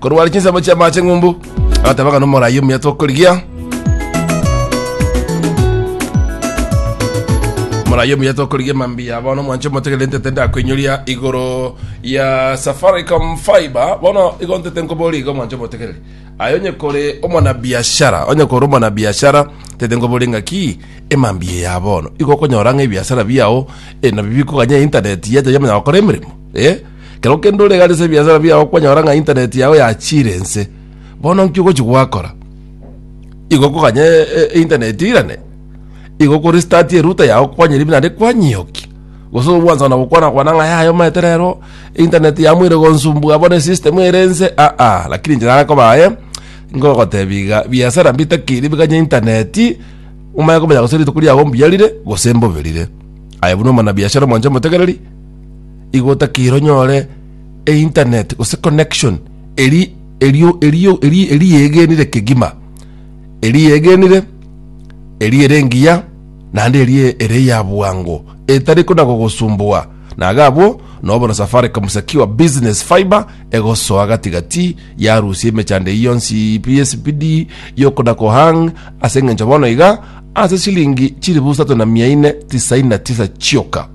korwara chinsemo chi'amache ng'umbu agateba ng'a nomorai omuya tokorigia morai omuya tokorigia mambia bono mwanche motegere ntete ndakoinyoria igoro ya safaricom fiber bono igo ntete nkobori igo mwanche motegere aye onye kore omwanabiashara onye kore omwanabiashara tete nkobori ng'aki emambia ya bono igo okonyora ng'a ebiasara biao eh, nabio bikoganya internet yacha yamanya gokora emeremo eh Ekero kende ore iga rese ebiasara biao kwanyora ng'a internet yao yachiire ense, bono nki ogochi gwakora? Igo okoganya e- e- e internet irane? Igo okorestart erouter yao kwanyeri pi naende kwanyioki? Gose obwansa ona gokwana kwana ng'a yaya omanyete rero internet yamoire gonsumbua bono esystem ere ense aa lakini inche nare koba aye ngogotebia iga biasara mbitakeire bikanye internet omanye komenya gose rituko riago mbuya rire gose mbobe rire. Aye buna omwanabiashara omwancha omotegereri. igo otakire onyore einternet gose connection eri erio erio eri eri yegenire kegima eri yegenire eri ere engiya naende eri ere ya bwango etari kona gogosumbua naga abwo nobo na safaricom secure business fiber egosoa gatigati yarusia emechando eyi yonsi pspd yokona kohang ase eng'encho bono iga ase chilingi chilifu isato na mia ine tisaini na tisa chioka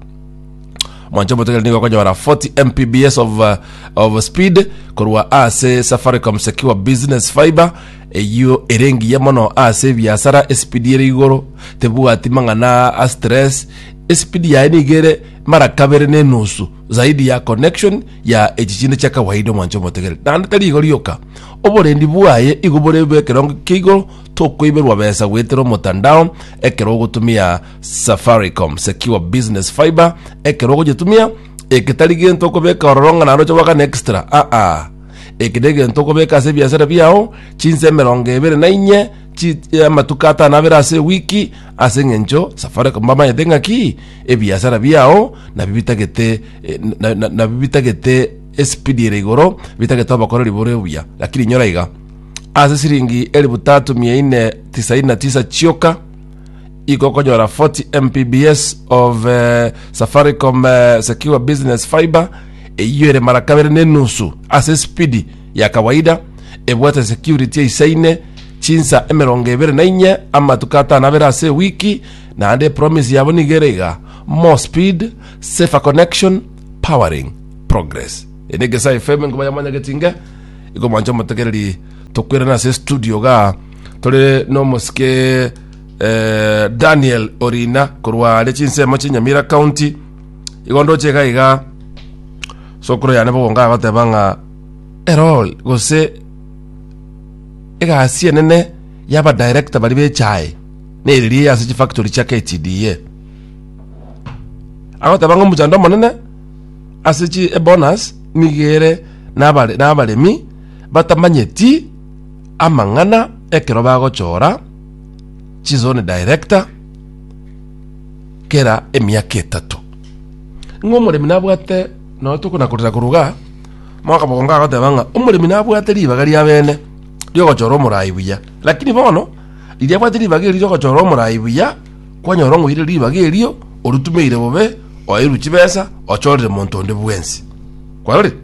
Mwancho Motogere nigo okonyora 40 Mbps of, uh, of speed korwa ase Safaricom Secure Business Fiber eyio ere engiya mono ase ebiasara esipidi ere igoro tebwati mang'ana a stress esipidi yaye nigo ere mara kabere na enusu zaidi ya connection ya echi chinde chia kawaida omwancho omotegere naende tari igo rioka oborendi bwaye igo bore bwa ekerongo kia igoro tokoiberwa besa goetera omotandao ekero ogotumia Safaricom Secure Business Fiber ekero ogoyetumia eke tari gento okobeka ororo ng'a naroche gwakana extra aa eke na egento okobeka ase ebiasara biao chinsa emerongo ebere na inye chi eh, amatuko atano abere ase ewiki ase eng'encho Safaricom bamanyete ng'a ki ebiasara biao nabio bitagete eh, na- na- nabio bitagete espidi ere igoro bitagete obokoreri bore obuya lakini inyora iga ase siringi elifu tatu mia ine tisaini na tisa chioka Iko konyora 40 Mbps of eh, Safaricom eh, Secure Business Fiber eyio ere mara kabere na enusu ase spidi ya kawaida ebwate security eisaine chinsa emerongo ebere na inye amatuko atano abere ase ewiki naende promise yabo nigo ere iga more speed safer connection powering progress ene gesa fm ngoba yamanya getinge igo mwancho motegereri tokwerana ase studio ga tore nomosike eh, daniel orina korwa are chinsemo chinyamira county igo ndoche iga iga sokoro yane bogonga agoteba ng'a erol gose egasi enene yaba director bari bechae neririe ase chifactory chia ktda agoteba ng'a omochando omonene ase chi ebonus nigere nabare- nabaremi batamanyeti Amang'ana ekero bagochora chizone director kera emiaka etato. Ng'a omoremi nabwate noe tokonakorera koruga mwaka mogongo agoteba ng'a omoremi nabwate ribaga ria bene riogochora omorai buya. Lakini bono riria abwate ribaga erio riogochora omorai buya kwanyora ng'a oire ribaga erio oritumeire bobe oeirwe chibesa ochorire monto onde bwensi. Kwarorire?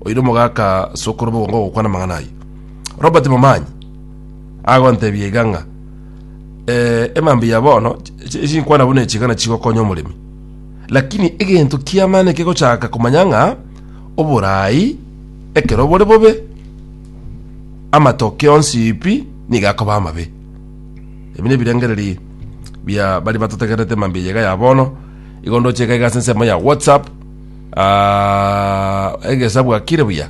Oire omogaka sokoro bogongo ogokwana amang'ana ayio. Robert Momanyi agontebia iga ng'a eh, emambi ya bono ch- ch- chinkwana buna eching'ana chigokonya omoremi lakini egento kiamane kegochaka komanya ng'a oborai ekero bore bobe amatoke onsi pi niga akoba amabe ebi nebirengereri bia bari batotegerete emambi eyega ya bono igo ndoche iga iga ase ensemo ya whatsapp ah, egesabu akire buya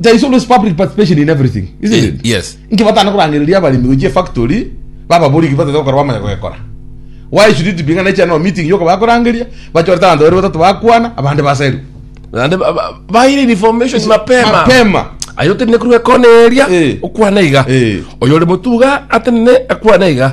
there is always public participation in everything isn't Ye- it yes. inki batana korangereria abalimi gochia factory bababori ki batete gokora bamanya gokora why should it be ng'a necha no meeting yoko bakorangeria bachorete abanto babere batatu bakwana abande basairwe Naende ba- ba- baire information mapema mapema ayo tene kurwa ekona eria Eh. okwana iga Eh. oyo ore motuga atenene akwana iga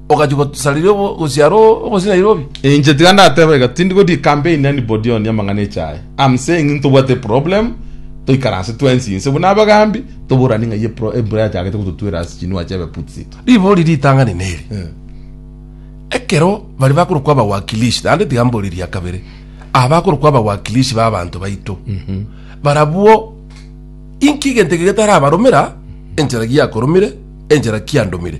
ogachia gosariria obo- gosiara o- obosina Nairobi. Inche tiga ndateba iga tindi go decampaign anybody on amang'ana eche aya. I'm saying ng'a ntobwate problem, toikaranse twensi inse buna abagambi, toborane ng'ai epro- embura yachagete gototwera ase chinua chiabe putsito. Ribori ritang'ani neri, Eh. ekero bari bakorokwa abawakilishi, naende tiga mbore eria kabere, aba bakorokwa abawakilishi ba abanto baito, barabwo inki egento eke getarabaromera enchera giakoromire, enchera kiandomire?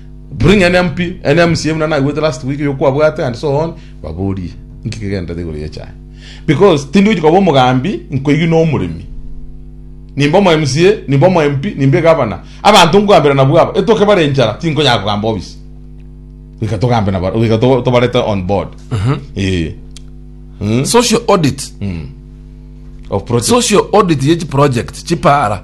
Bring any MP, any MCA buna naigwete last week yo kwabwate and so on, baborie inki kegenderete igoro y'echae. Because tindi gochi koba omogambi nkoigwe na omoremi. Nimbe omo MCA, nimbe omo MP, nimbe egavana. Abanto nkogambera nabwo aba, etoke bare enchara tinkonyara kogamba obisi. Goika togambe nabare, goika to- tobarete on board. Eh. Mm. social audit Of project. social audit ye chiproject chipara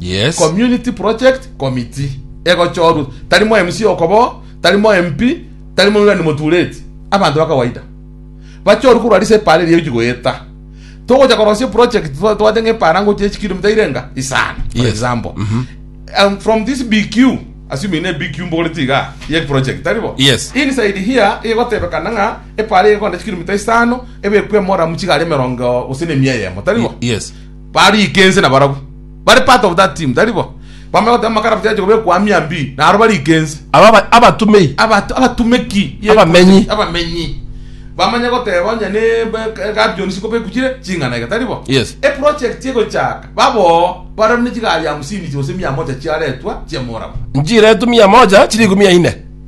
Yes. community project committee egochorwa tari mo mc okobo tari mo mp tari mo ni motureti abanto bakawaida bachorwe korwa risa epara eria egochi goeta togocha korosia project twa- twate ng'a epara ngochi echi kilomita irenga isano for Yes. example um, from this bq assuming ne bq mbogoreti iga ye project tari bo Yes. inside here egotebekana ng'a epara egonda chikilomita isano ebekwe emora muchigari emerongo gose ne emia eyemo tari bo Yes. bariike ense nabarabwo. Bare part of that team, tari bo? Bamanye goteba makaraft yache kobekwa aa mia mbii, na aro bariike ense. Aba aba- abatumei, Abato- abatumeki ye- Abamenyi. abamenyi bamanye goteba onye ne be- gabion sikobekwa chire ching'ana iga tari bo Yes. eproject egochaka baboo barabwo ne chigari hamsini gose mia moja chiaretwa chiamorabwo nchiretu mia moja chirikumi yaine.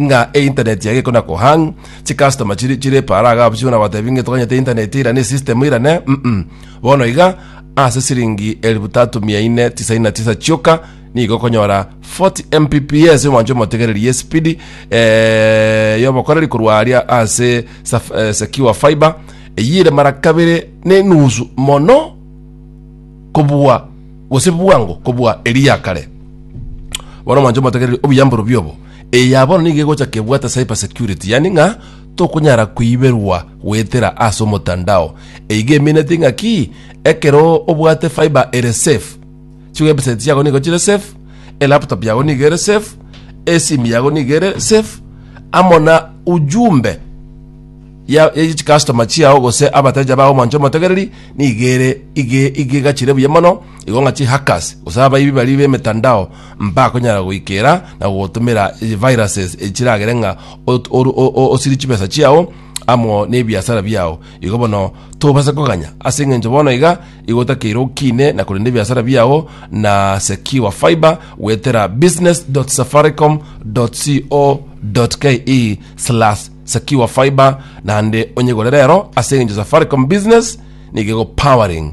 ng'a einternet yaye ekona kohang chicustoma chiri chire para iga abwo chikona gotebia ng'a toganyete einternet ira ne system ira ne mm bono iga ase siringi elifu tatu mia ine tisaini na tisa chioka nigo okonyora 40 mbps omwancho omotegereri ye speed eh, yobokoreri korwa aria ase saf- eh, secure fiber eyire mara kabere ne nusu mono kobua gose bwango kobua eri ya kare bono mwancho omotegereri obuyamboro biobo Eye ya bono nigo egocha kebwate cyber security, yaani ng'a tokonyara koiberwa goetera ase omotandao. Eiga emineti ng'aki ekero obwate fiber ere safe, chiwebsite chiago nigo chire safe, elaptop yago nigo ere safe, esimu yago nigo ere safe, amo na ujumbe ya ya chikastoma chiao gose abateja bao manche omotegereri nigo ere ige igegachire buya mono igo ng'a chihackers gose abaibi baria b'emetandao mbakonyara goikera na gogotumera viruses echiragere ng'a ot- oru- o- o- osiri chibesa chiao amo nebiasara biao igo bono tobase koganya ase eng'encho bono iga igotakeire okine na korenda ebiasara biao na secure fiber gwetera business.safaricom.co.ke slash secure fiber naende onyegore rero ase eng'encho safaricom business nigo powering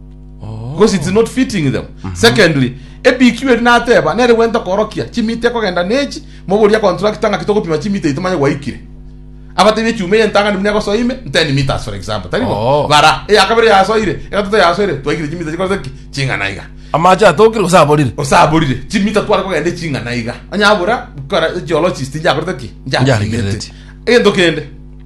because it's not fitting them secondly ebq eri nateba nere gwenta korokia chimita ekogenda nechi mogoria contractor ng'aki togopima chimita eye tomanye gwaikire abatebi echuma eye ntang'ani buna egosoa ime 10 meters for example tari bo Oh. bara eya kabere yasoire egatato yasoire twaikire chimita chikorete ki ching'ana iga amache atokire gose aborire osaborire chimita tware kogenda eching'ana iga onye abura kora geologist njakorete ki Njaregereti. njaregereti egento kende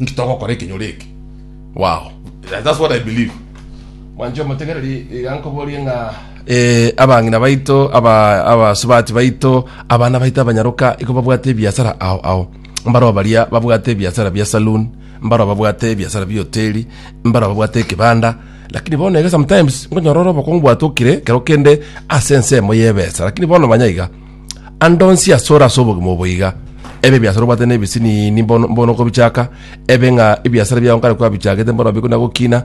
Inki togokora ekenyoro eke? Wow, that's what I believe. Mwanche omotegereri iga nkoborie ng'a eh, abang'ina baito aba abasubati baito abana baito abanyaroka iko babwate ebiasara ao ao mbaro baria babwate ebiasara bia saloon mbaro babwate ebiasara bia hoteli mbaro babwate ekibanda lakini bono ege sometimes nkonyorora obokongu bwatokire kero kende ase ensemo y'ebesa lakini bono manya iga Ande onsi ase ore ase obogima obo iga, ebe ebiasara obwate na ebisinini mbono mbono okobichaka, ebe ng'a ebiasara biago nkare kwabichagete mbono bikuna gokina,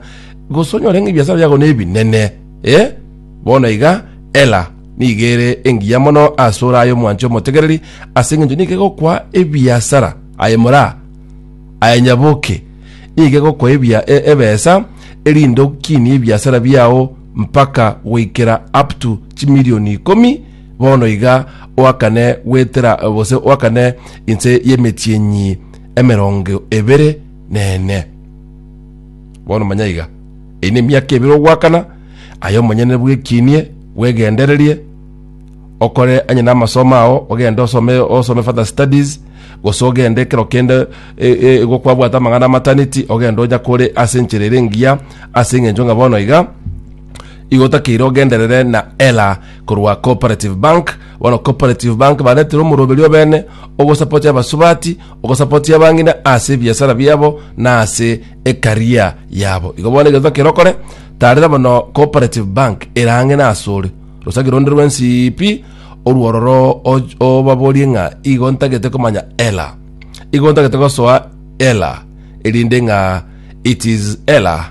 gose onyore ng'a ebiasara biago nebinene, eh? Bono iga, Ela nigo ere engiya mono ase ore aye omwanche omotegereri, ase engencho nigo egokwa ebiasara aye moraa aye nyaboke nigo egokwa ebia e- ebesa erinde okinie ebiasara biao mpaka goikera up to chimilioni ikomi Bono iga oakane gwetera gose oakane inse y'emetienyi emerongo ebere nene. Bono manya iga, eye nemiaka ebere ogoakana, aye omonyene bwekinie, bwegendererie, okore anye n'amasomo ao, ogende osome osome further studies, gose ogende ekero kende e- e- igo kwabwate amang'ana amataneti, ogende onyakore ase enchera ere engiya, ase eng'encho ng'a bono iga, igo otakeire ogenderere na ela Korwa Cooperative Bank, bono Cooperative Bank baretire omoroberio o bene ogosapotia abasubati, ogosapotia abang'ina ase ebiasara biabo na ase ecareer yabo. Igo bono egento kere okore, taarera bono Cooperative Bank erang'ina asore. Rosagi ronde rw'ensiipi orwo ororo och- obaborie ng'a igo ntagete komanya ela. Igo ntagete gosoa ela erinde ng'a it is ela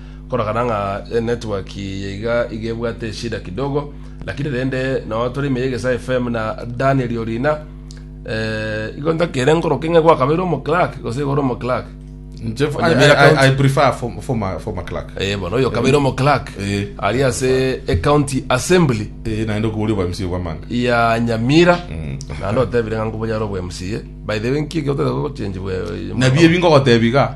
Korokana ng'a enetwork yaiga iga ebwate eshida kidogo lakini rende nao tore ime yegesa FM na Daniel Orina eh, igo ntakere nkoroke ng'e gwakabeire omoclark gose igoro omoclark Nche f- I, Onyebera I, I, county. I prefer form- former, former clerk. Eh, bono oyo kabeire omoclark Eh. ari ase ecounty assembly Eh, naende okobori obwa MC obwamanga. ya nyamira Mm. naende otebire ng'a nkobonyare obwa mca by the way nki eke otete gochenji bwe Nabio ebi ngogotebiga.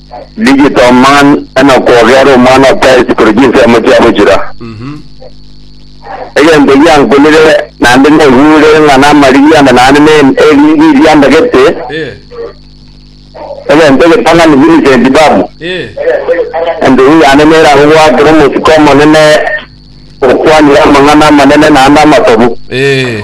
Digital man enakwoga ere omwana o Christ korwa chinsemo chiabo chira. Mhm. Egento giankorire naende naigure ng'a namarigi ande naende ne eriri riandagete Eh. egento egetang'ani Vincent Babu. Eh. Endugu yane neragogwakera omosiko omonene okwanire amang'ana amanene naende amatobu. Eh.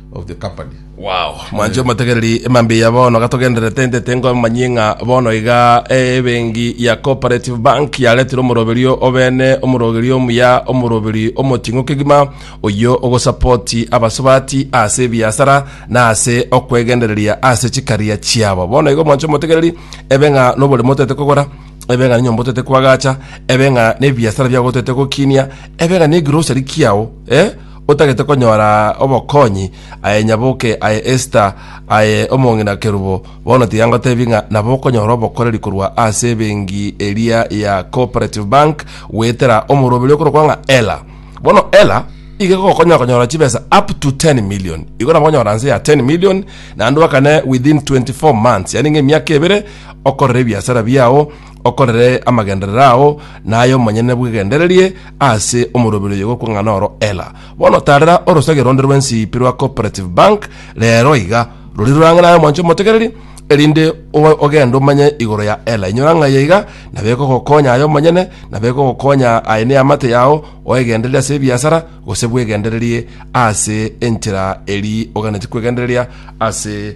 of the company. Wow, mwanche omotegereri emambia ya bono gatogenderete ndete ngomanyie ng'a bono iga ebengi ya cooperative bank yaretire omoroberio obene omorogerio omuya omoroberi omoting'u kegima oyio ogosapoti abasubati ase ebiasara na ase okwegendereria ase chikaria chiabo bono igo mwanche omotegereri ebe ng'a noboremo otete kogora ebe ng'a nenyomba otete kwagacha ebe ng'a nebiasara biago otete gokinia ebe ng'a negrosari kiao eh Otagete konyora obokonyi, aye nyaboke, aye Esta, aye omong'ina Kerubo, bono tiga ngotebi ng'a nabo okonyora obokoreri korwa ase ebenki eria ya Cooperative Bank goetera omorwaberi oyo okorokwa ng'a Ella. Bono Ella iga egokonyora konyora chibesa up to 10 million. Igo nabo okonyora nse ya 10 million naende oakane within 24 months, yaani ng'a emiaka ebere okorere ebiasara biao Okorere amagenderero ao naye omonyene bw'egendererie ase omoroberi oyo gokwang'ana oro Ella. Bono taarera orosegeo ronde rw'ensiipi rwa Cooperative Bank reero iga, rori rorang'e naye omwancho omotegereri, erinde oe ogende omanye igoro ya Ella. Inyora ng'ai aiga, nabo ekogokonya aye omonyene, nabo ekogokonya aye neamate yao oegendereria ase ebiasara, gose bw'egendererie ase enchera eria oganetie kw'egendereria ase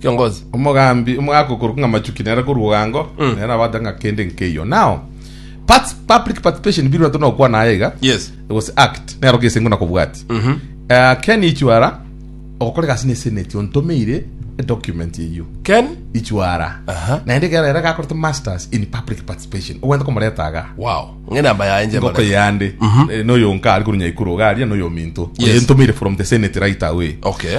Kiongozi. Omogambi omo agokorokwa ng'a Machuki nere korwa Ogango, nere nabwate ng'a kende nkeiyo. Now, parts, public participation biri bato nokwana aye iga, Yes. gose act, nero gese ingo nakobwati. Eh, Ken Ichwara, ogokora egasi na eseneti, ontomeire edocument eyio. Ken. Ichwara. Aha. Naende ekero ere gakorete masters in public participation, ogwente komoreta iga. Wow. Ng'e namba yaye nje Ngoko mara. yande, eh, noyo nka ari korwa Nyaikuru iga aria, noyo ominto. Yes. Oyo entomeire from the senate right away. Okay.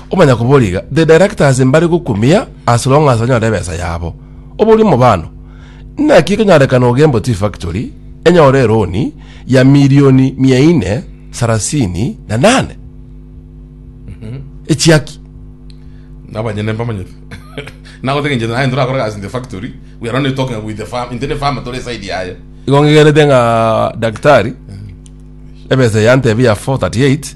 Omanya koboriga, the directors mbare gokumia as long as banyore ebesa yabo. Oborie omobano, Naki ekonyarekana Ogembo Tea Factory enyore eroni ya milioni mia ine sarasini na nane? Echiaki. Nabanyene mbamanyete. Nagoteba inche naye torakore gasi in the factory. We are only talking with the farm. Inte ne farm tore side yaye. Igo ngegenete ng'a daktari ebesa yantebia ya 438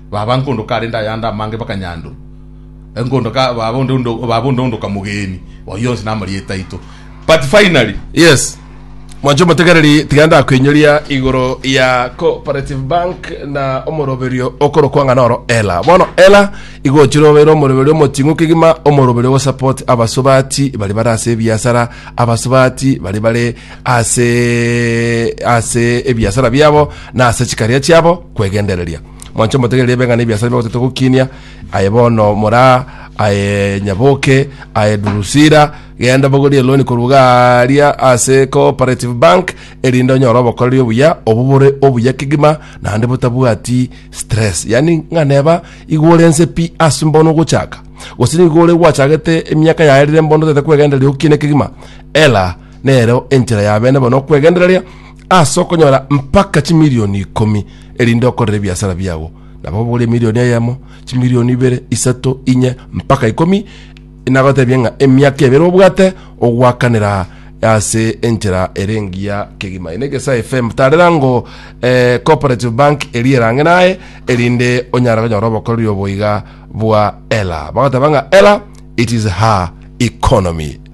Baba nkondo karende ayande amange bakanyandu enkondo ka baba onde onde baba onde onde okamogeni oyo yonsi namarieta aito but finally Yes. Mwancho motegereri tiga ndakwenyoria igoro ya cooperative bank na omoroberio okorokwa ng'a noro ela. Bono ela igochire obeire omoroberio omoting'u kegima omoroberio ogosupport abasubati bari bare ase ebiasara, abasubati bari bare ase ase ebiasara biabo na ase chikaria chiabo kwegendereria mwanche motegereri ebeng'ana ebiasara bigotete gokinia aye bono mora aye nyaboke aye durusira genda bogorie loni korwa garia ase cooperative bank erinde onyore obokoreri obuya obubore obuya kegima naende botabwati stress yani ng'aneba igworense pi ase mbono gochaka gose nigo ore gwachagete emiaka yaerire mbono tete kwegendereria okinie kegima ela nero enchera ya bene bono okwegendereria ase okonyora mpaka chimilioni ikomi erinde okorere ebiasara biago nabo obogore emilioni eyemo chimilioni ibere isato inye mpaka ikomi nagotebia ng'a emiaka ebere obwate ogwakanera ase enchera ere engiya kegima ene egesa fm tarera ngo eh, cooperative bank eri erange naye erinde onyara konyora obokoreri oboiga bwa ela bagoteba ng'a ela it is her economy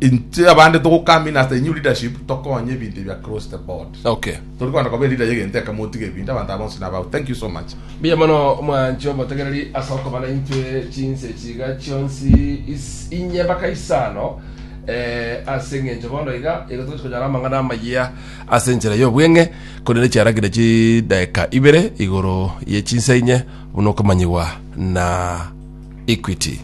Inche abande togokamina ase new leadership tokonye ebinto ebi across the board. Okay. Tori kogenda koba leader yegento eke motige ebinto abanto aba bonsi nabao. Thank you so much. Mbuya mono mwanche obotegereri ase okoba naintwe chinse echi iga chionsi is, inye mpaka isano eh, ase eng'encho bono iga igo togochi konyara amang'ana amayia ase enchera y'obweng'e korende chiaragire chidaeka ibere igoro ye chinsa inye buna okomanyigwa na Equity.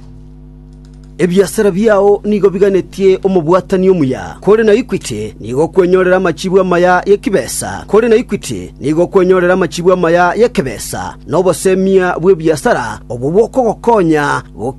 Ebiasara biao nigo biganetie omobwatani omuya, kore na Equity nigo okwenyorera amachibu amaya y'ekebesa, kore na Equity nigo okwenyorera amachibu amaya y'ekebesa, na obosemia bw'ebiasara obwo bokogokonya.